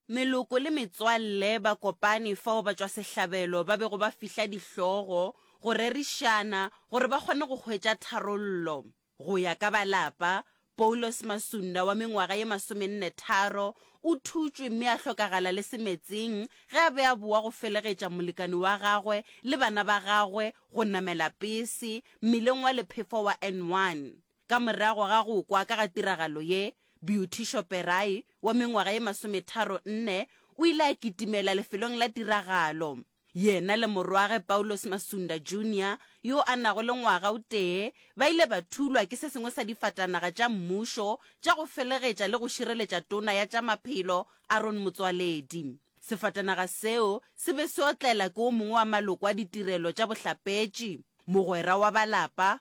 Meloko le metswalle ba kopane fao batšwasehlabelo ba bego ba fihla dihlogo go rerišana gore ba kgone go hwetša tharollo. Go ya ka ba lapa, Poulos Masunda wa mengwaga ye masomenne tharo o thutšwe mme a hlokagala le semetseng ge a be a boa go felegetša molekane wa gagwe le bana ba gagwe go namela pese mmileng wa Lephefo wa N1. Ka morago ga go kwa ka ga tiragalo ye, Beauticio Peray, wa mengwaga ye masometharo nne, o ile a kitimela lefelong la tiragalo. Yena le morwagwe Paulos Masunda Junior, yo a nago le ngwaga o tee, ba ile ba thulwa ke se sengwe sa difatanaga tša mmušo tša go felegetša le go šireletša tona ya tša maphelo Aaron Motsoaledi. Sefatanaga seo se be se otlela ke o mongwe wa maloko a ditirelo tša bohlapetši, mogwera wa ba lapa,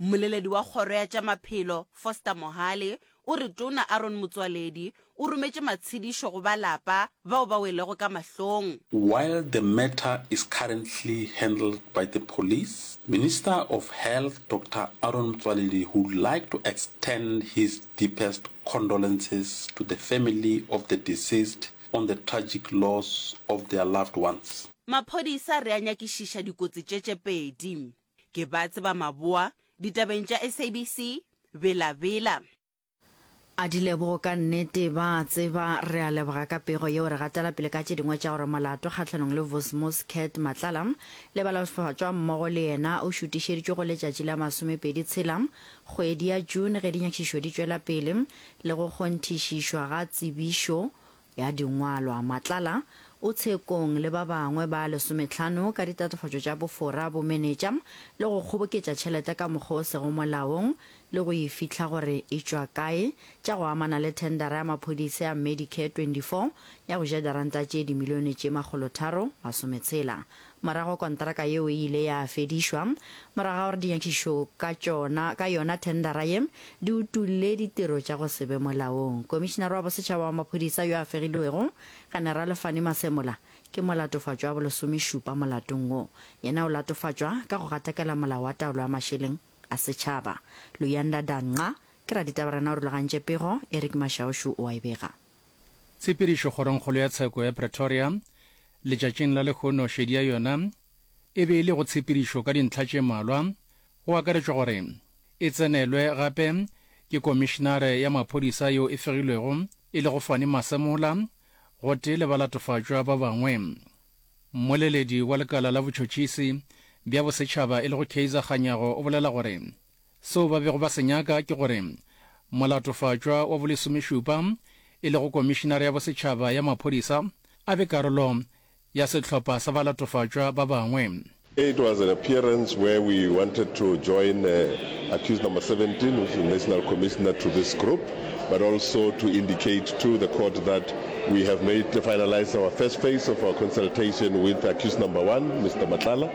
Mmoleledi wa kgoro ya tša maphelo, Foster Mohale, o re Tona Aaron Motsoaledi o rometše matshedišo go ba lapa bao ba welego ka mahlong. While the matter is currently handled by the police, Minister of Health Doctor Aaron Motsoaledi would like to extend his deepest condolences to the family of the deceased on the tragic loss of their loved ones. Maphodisa re a nyakišiša dikotsi tše tše pedi. Ke ba tseba maboa ditabeng tša SABC, Bela Bela. A Dilebogo ka nnete ba a tseba. Re a leboga ka pego yeo. Re gatela pele ka tše dingwe tša gore molato kgahlanong le Vosmos Cat Matlala le balaohlofatšwa mmogo le yena o šutišeditšwe go letšatši la masomepedi tshela kgwedi ya June ge dinyakišišo di tšwela pele le go kgonthišišwa ga tsebišo ya Dingwalwa, Matlala, o tshekong le ba bangwe ba lesometlhano ka ditatofatšo tša bofora bomenetša le go kgoboketša tšhelete ka mokgwa o sego molaong le go e fihla gore e tšwa kae tša go amana le thendara ya maphodisa ya Medicare 24 ya go ja diranta tše dimilione tše makgolotharo masometshela Morago kontraka yeo e ile ya fedišwa. Morago ga gore dinyakišišo ka tšona ka yona thendara ye di utolle ditiro tša go se be molaong, Komišinara wa Bosetšhaba wa Maphodisa yo a fegilwego, Generale Fannie Masemola, ke molatofatšwa wa bolesomešupa molatong wo. Yena o latofatšwa ka go gatakela Molao wa Taolo ya Mašeleng a Setšhaba. Luyanda Danqa ke raditaba rena o rulagantše pego, Eric Mashaušu o a e bega. Tshepedišo Kgorongkgolo ya Tsheko ya Pretoria, letšatšing la lehono šedi ya yona e be e le go tshepedišo ka dintlha tše mmalwa, go akaretšwa gore e tsenelwe gape ke Komišinare ya Maphodisa yo e fegilwego e lego Fannie Masemola gotee le balatofatšwa ba bangwe. Mmoleledi wa lekala la botšhotšhisi bja bosetšhaba e lego Kaizer Kganyago o bolela gore, Seo ba bego ba se nyaka ke gore Molatofatšwa wa Bolesomešupa, e lego Komišinare ya Bosetšhaba ya Maphodisa, a be karolo ya sehlopha sa balatofatšwa ba bangwe. It was an appearance where we wanted to join accused number 17, which is the National Commissioner, to this group, but also to indicate to the court that we have made finalized our first phase of our consultation with accused number one, Mister Matlala.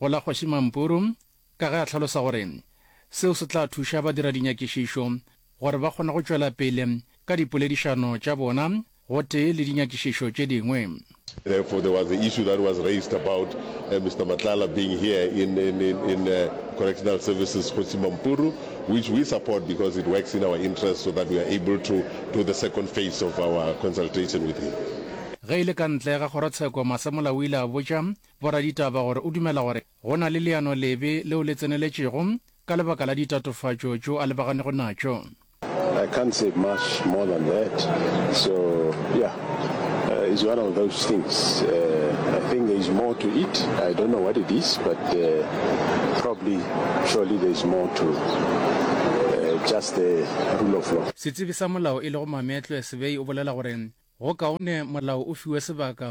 go la Kgoši Mampuru ka ge a hlalosa gore seo se tla thuša badiradinyakišišo gore ba kgone go tšwela pele ka dipoledišano tša bona gotee le dinyakišišo tše dingwe. Therefore, there was the issue that was raised about uh, Mr. Matlala being here in, in, in, in uh, Correctional Services Kgosi Mampuru, which we support because it works in our interest so that we are able to do the second phase of our consultation with him. Ge e le ka ntle ga kgorotsheko, Masemola o ile a botša boraditaba gore o dumela gore go na le leano lebe leo le tseneletšego ka lebaka la ditatofatšo tšo a lebaganego natšo. I can't say much more than that. So, yeah, uh, it's one of those things. Uh, I think there's more to it. I don't know what it is, but uh, probably, surely there's more to uh, just the rule of law. Setsebi sa molao e lego Mametlwe Sebei o bolela gore go kaone molao o fiwe sebaka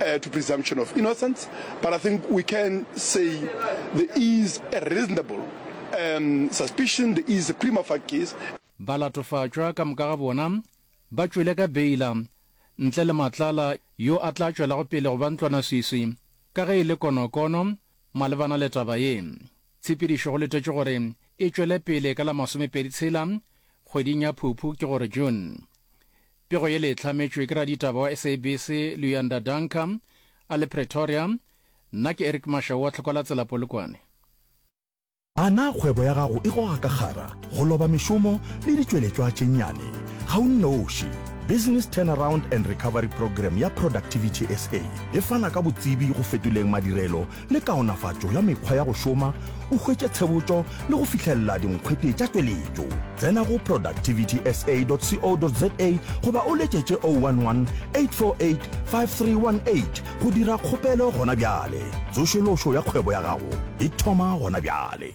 uh, to presumption of innocence, but I think we can say there is a reasonable um, suspicion, there is a prima facie case. ba latofatšwa ka moka ga bona ba tšwele ka beila ntle le matlala yo a tla tšwelago pele go ba ntlwanaswiswi ka ge e le konokono malebana le taba ye. Tshepedišo go letetšwe gore e tšwele pele ka la masomepedi tshela kgweding ya Phuphu ke gore June. Pego yele e hlametšwe ke raditaba wa SABC Luyanda Danka a le Pretoria, nna ke Eric Mashau wa Tlhoko la Tsela Polokwane. A na kgwebo ya gago e goga ka kgara, go loba mešomo le ditšweletšwa tše nnyane? Ga o nnoši. Business Turnaround and Recovery Programme ya Productivity SA e fana ka botsebi go fetoleng madirelo le kaonafatšo ya mekgwa ya go šoma o hwetše tshebotšo le go fihlelela dinkgwete tša tšweletšo tsena go productivitysa.co.za goba o letšetše 011 848 5318 go dira kgopelo gona bjale tsošološo ya kgwebo ya gago e thoma gona bjale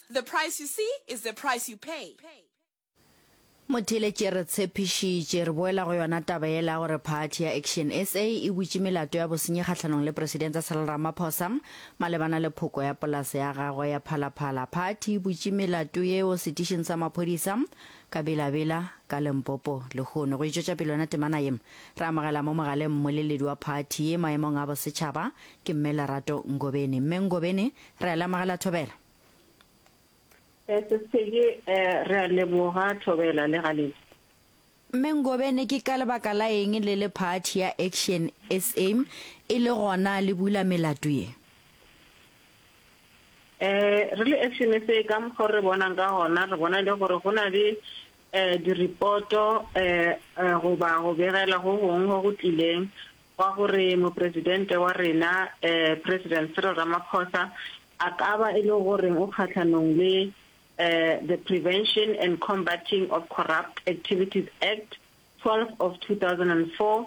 The price you see is the price you pay. Motheeletše re tshepišitše, re boela go yona taba yela ya gore phathi ya Action sa e butše melato ya bosenyi kgahlanong le Presidente Cyril Ramaphosa malebana le phoko ya polase ya gagwe ya Phalaphala. Phathi e butše melato yeo setišing sa maphodisa ka Bela-Bela ka Limpopo lehono. Go e tšwetša pele yona temana ye, re amogela mo mogaleng mmoleledi wa phathi ye maemong a bosetšhaba, ke Mme Lerato Ngobeni. Mme Ngobeni, re a le amogela thobela. Eh, Sesedi, eh, re a leboga Thobela le Galedi. Mme Ngobene ke ka lebaka la eng le le phathi ya Action SA e le gona le bula melato ye? Eh, re le Action SA ka mokgwa o re bonang ka gona, re bona e le gore go na le eh, diripoto eh, eh, goba go begela go gongwe go go tlileng wa gore Mopresidente wa rena, President Cyril Ramaphosa, a ka ba e le goreng o kgahlanong le The Prevention and Combating of Corrupt Activities Act 12 of 2004,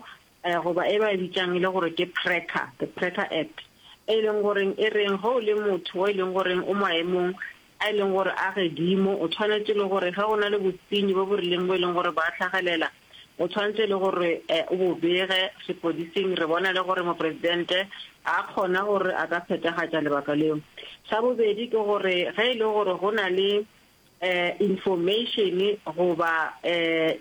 goba e ba e bitšang e le gore ke PRECCA, The PRECCA Act, e leng gore e reng ge o le motho o e leng gore o maemong a e leng gore a gedimo, o tshwanetše le gore ge go na le bosenyi bo bo rileng bo e leng gore ba hlagelela, o tshwanetše le gore o bo bege sepodising, re bona le gore Mopresidente a kgona gore a ka phethagatša lebaka leo. Sa bobedi ke gore ge e le gore go na le information goba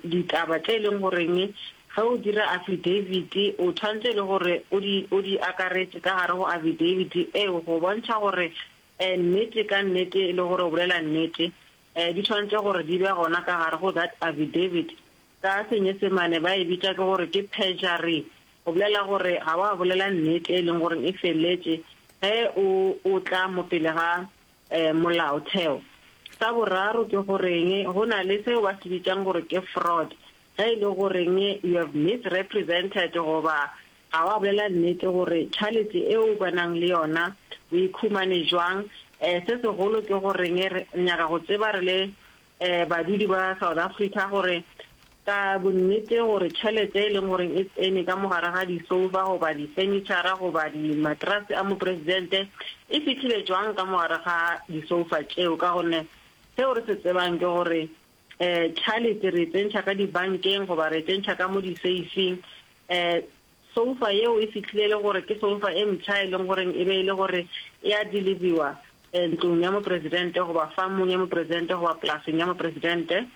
ditaba tše e leng goreng ge o dira affidavit o tshwanetse le gore o di akaretše ka gare go affidavit eo go bontšha gore E, nnete, ka nnete e le gore o bolela nnete. E, di tshwanetse gore di be gona ka gare go that affidavit. Ka Senyesemane ba e bitša ke gore ke perjury, go bolela gore ga wa bolela nnete e leng gore e feletše ge o o tla mo pele ga e, molaotheo. Sa boraro ke goreng go na le seo ba se bitšang gore ke fraud, ge e le goreng you have misrepresented goba A wa bolela nnete gore tšhalete e o ba nang le yona o e khumane jwang? Eh, se segolo ke gore nge re nyaka go tseba re le eh badudi ba South Africa gore ka bonnete gore tšhalete e leng gore e tsene ka mogare ga disoufa goba difenitšhara goba di matrase a mopresidente e fihlile jwang ka mogare ga disoufa tšeo ka gonne seo re se tsebang ke gore um tšhalete re e tsentšha ka dibankeng goba re e tsentšha ka mo diseifing um soufa yeo e fitlhile le gore ke soufa e mpšha e leng goreng e be e le gore e a deliviwa um ntlong ya mopresidente goba famong ya mopresidente goba polaseng ya mopresidente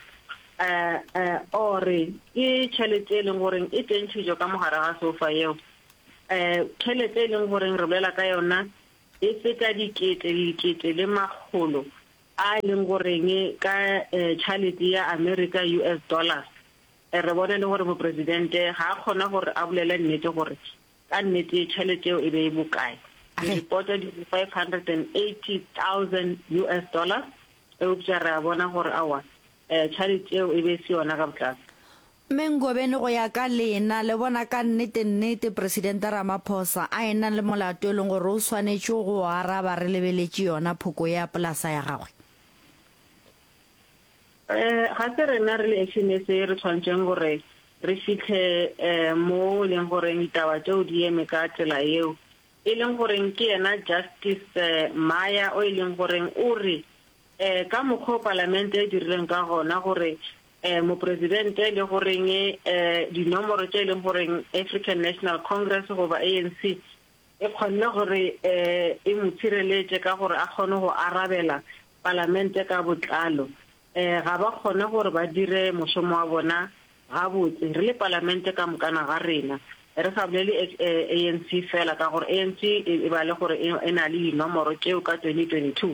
um um ore ke tšhelete e leng goreng e tsentšhitšo ka mogare ga soufa yeo um tšhelete e leng goreng re bolela ka yona e feta dikete le dikete le makgolo A e leng goreng ka tšhalete ya Amerika, US dollars? Re bone le gore Mopresidente ga a kgona gore a bolele nnete gore ka nnete tšhalete eo e be e bokae. Diripoto di re 580,000 US dollars, eupša re a bona gore aowa, tšhalete eo e be e se yona ka botlalo. Mme Ngobeni go ya ka lena le bona ka nnete nnete Presidente Ramaphosa a ena le molato e leng gore o swanetše go o araba re lebeletše yona phoko ea polasa ya gagwe? Ee, ga se rena re le Action SA re tshwanetšeng gore re fihle moo e leng gore ditaba tšeo di eme ka tsela yeo, e leng gore ke yena Justice Maya o e leng gore o re eh, ka mokgwa o palamente e dirileng ka gona gore eh, mopresidente le goreng eh, dinomoro tše e leng goreng african national congress goba anc e kgonne gore eh, e mo tshireletše ka gore a kgone go arabela palamente ka botlalo eh, ga ba kgone gore ba dire mošomo wa bona gabotse re le palamente ka mokana ga rena re sa bolele eh, anc fela ka gore anc e, e ba le gore e, e na le dinomoro tšeo ka 2022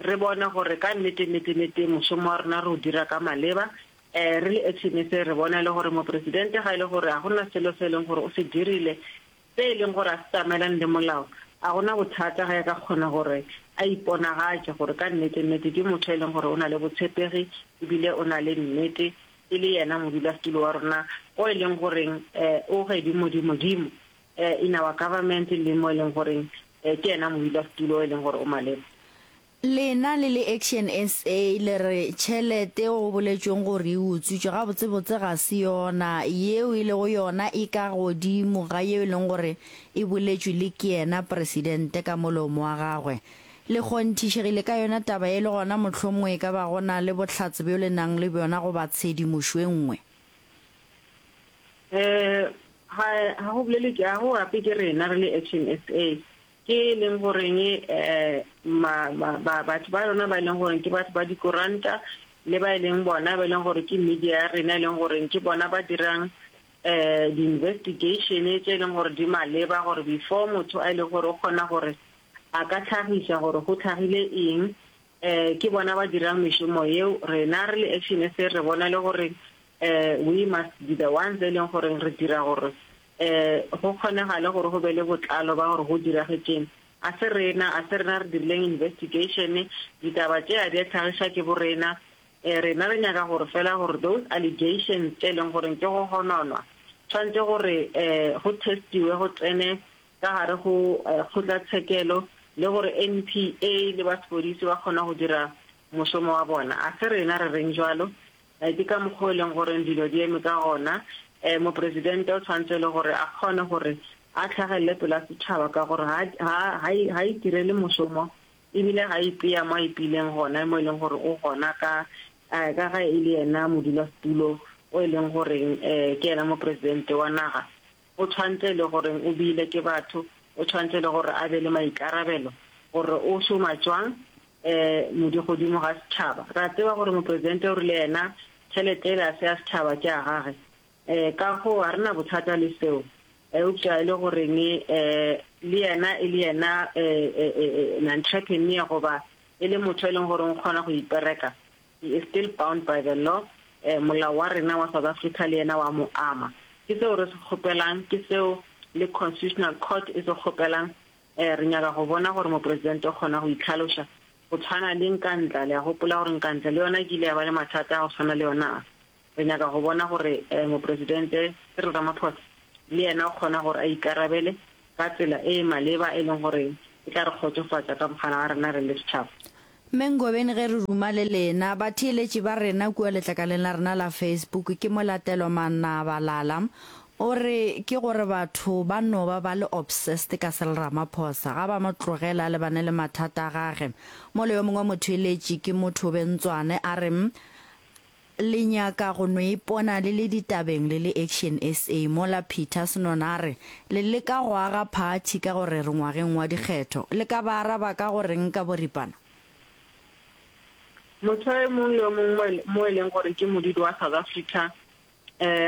re bone gore ka nnete nnete nnete mošomo wa rena re o dira ka maleba um re le actioneng se re bone le gore mopresidente ga e le gore ga go na selo se e leng gore o se dirile se e leng gore a se tsamaelane le molao a gona bothata ge a ka kgona gore a iponagatše gore ka nnete nnete ke motho e leng gore o na le botshepegi ebile o na le nnete e le yena modulasetulo wa rona o e leng goreng um o gedimodimodimo in our government le mo e leng goreng ke yena modula setulo o e leng gore o maleba. Lena le le Action SA le re tšhelete eo go boletšweng gore e utswitšwe gabotsebotse ga se yona, yeo e lego yona e ka godimo ga yeo e leng gore e boletšwe le ke yena Presidente ka molomo wa gagwe. Le kgonthišegile ka yona taba ye le gona mohlomongwe e ka ba go na le bohlatse bjo le nang le bjona goba tshedimošo e nngwe. Eh, ha ha go bolele ke a go gape ke rena re le Action SA ke e leng goreng eh ma ma- ba- batho ba rona ba e leng gore ke batho ba dikoranta le ba e leng bona ba e leng gore ke media ya rena e leng gore ke bona ba dirang eh di-investigation tse e leng gore di maleba gore before motho a e leng gore o kgona gore a ka tlhagisa gore go tlhagile eng um ke bona ba dirang mešomo yeo, rena re le Action SA re bona e le gore um we must be the ones e leng gore re dira gore um go kgonegale gore go be le botlalo ba gore go diragetšeng. A se rena, a se rena re dirileng investigation, ditaba tše a di a tlhagiša ke borena, um rena re nyaka gore fela gore those allegations tše e leng gore ke go gononwa tshwanetse gore um go testiwe go tsene ka gare go kgotlatshekelo le gore NPA le ba sepodisi ba kgona go dira mošomo wa bona. A se rena re reng jalo? Ke ka mokgwa o e leng gore dilo di eme ka gona. Mopresidente o tshwanetse le gore a kgone gore a tlhagelele pela setšhaba ka gore ga itirele mošomo ebile ga ipea mo a ipileng gona mo e leng gore o gona ka ka ga e le yena modulasetulo o e leng goreng ke yena mopresidente wa naga O tshwantse e le gore o beile ke batho, o tshwantse e le gore a be le maikarabelo gore o šoma tšwang modi godimo ga setšhaba. Re a tseba gore Mopresidente o rile yena tšhelete ele a se ya setšhaba ke ya gage, ka goo ga re na bothata le seo. Eupša e le goreng le yena e le yena entrepreneur goba e le motho e leng gore o kgona go ipereka, He is still bound by the law, eh, molao wa rena wa South Africa le yena wa mo ama. Ke seo re se kgopelang, ke seo le Constitutional Court e se kgopelang. Eh, re nyaka go bona gore Mopresidente o kgona go itlhaloša, go tshwana le Nkandla. Le a gopola gore Nkandla le yona e kile ya ba le mathata a go tshwana le yona a. Re nyaka go bona gore Mopresidente Cyril Ramaphosa le yena o kgona gore a ikarabele ka tsela e e maleba e leng gore e tla re kgotsofatša ka bokgana wa rena re le setšhaba. Mme Ngobeni ge re ruma le lena, batheeletši ba rena kua letlakaleng la rena la Facebook ke Molatelwa Manabalala o re ke gore batho ba no ba ba le obsessed ka Cyril Ramaphosa, ga ba mo tlogele a lebane le mathata a gage. Mola yo mongwe motheeletši ke Mothobe Ntswane a re, Le nyaka go no ipona le le ditabeng le le Action SA mola Peter Snoon a re le leka go aga phathi ka gore re ngwageng wa dikgetho? Le ka ba araba ka go reng ka boripana? Motho e mong le o mong mo e leng gore ke modudi wa South Africa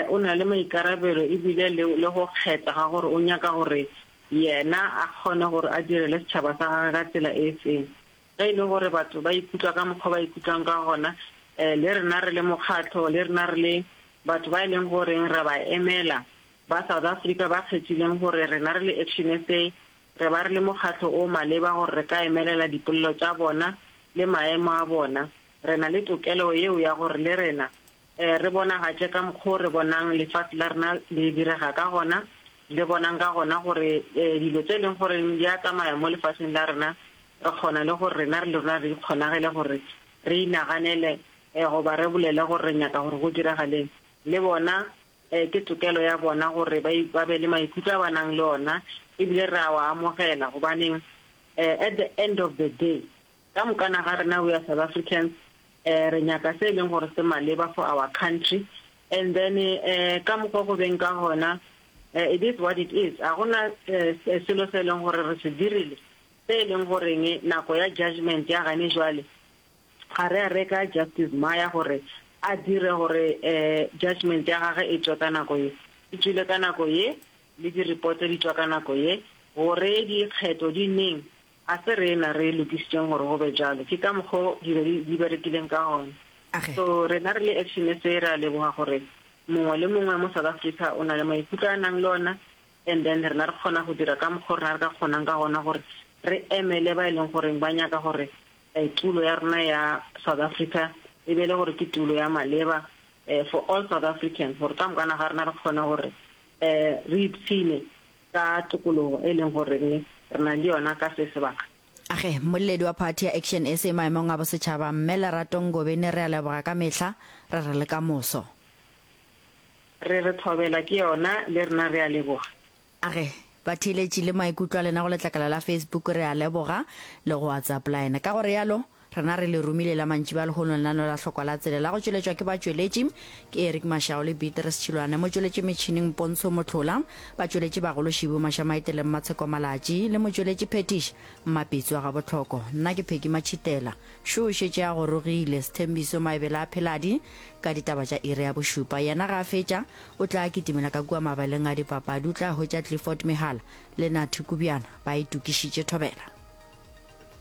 o na le maikarabelo e bile le le go kgetha ga gore o nyaka gore yena a kgone gore a direle setšhaba sa gagwe ka tsela e feng. Ge e le gore batho ba ikutlwa ka mokgwa o ba ikutlwang ka gona, le rena re le mokgatlo, le rena re le batho ba e leng gore re a ba emela, ba South Africa ba kgethileng gore rena re le Action SA re ba re le mokgatlo o maleba gore re ka emelela dipolelo tša bona le maemo a bona, re na le tokelo yeo ya gore le rena Re bonagatše ka mokgwa o re bonang lefase la rena le direga ka gona, le bonang ka gona gore dilo tše e leng gore di a tsamaya mo lefaseng la rena, re kgona le gore rena le rona re ikgonagele gore re inaganele goba re bolele gore re nyaka gore go diragaleng. Le bona ke tokelo ya bona gore ba be le maikutlo a ba nang le ona, e bile re a wa amogela. Gobaneng? At the end of the day, Ka mokana ga rena we are South Africans re nyaka se e leng gore se maleba for our country and then ka mokgwa go beng ka gona it is what it is. Ga gona selo se e leng gore re se dirile se e leng goreng nako ya judgement ya gane jwale ga re a reka Justice Maya gore a dire gore judgement ya gage e tšwe ka nako ye e tšwile ka nako ye le di reports di tšwa ka nako ye gore dikgetho di neng Ga se rena re lokišitšeng gore go be bjalo, ke ka mokgwa wo dilo di, di berekileng ka gona. Age. So rena re le Action SA re a leboga gore mongwe le mongwe mo South Africa o na le maikutlo a nang le ona, and then rena re kgona go dira ka mokgwa o rena re ka kgonang ka gona gore re emele ba e leng goreng ba nyaka gore eh, tulo ya rona ya South Africa e be le gore ke tulo ya maleba eh, for all South Africans gore ka mokana ga rena re kgone gore eh, re ipshine ka tokologo e leng gore re na le yona ka se sebaka. A Ge mmoledi wa phathi ya Action sa maemong a bosetšhaba, Mme Lerato Ngobeni re a leboga ka mehla, re re le ka moso. Re re thobela ke yona le rena re a leboga. A Ge batheeletši le maikutlo a lena go letlakala la Facebook re a leboga, le go WhatsApp line ka go realo. Rena re le romile la mantšiba a lehono lenano la Hlokwa la Tsela la go tšweletšwa ke batšweletši ke Eric Mashao le Beatrice Tšhilwane, motšweletši metšhineng Pontsho Mohlola, batšweletši bagolo Shibu Mashamaite le Mmatsheko Malatši le motšweletši phetiši Mmapitso wa Gabotlhoko. Nna ke Peggy Matšhitela. Šo o šetše a gorogile, Sthembiso Maebela a pheladi ka ditaba tša iri ya bošupa. Yena ge a fetša o tla kitimela ka kua mabaleng a dipapadi, o tla hwetša Clifford Mehala le Nathy Kubjana ba itokišitše thobela.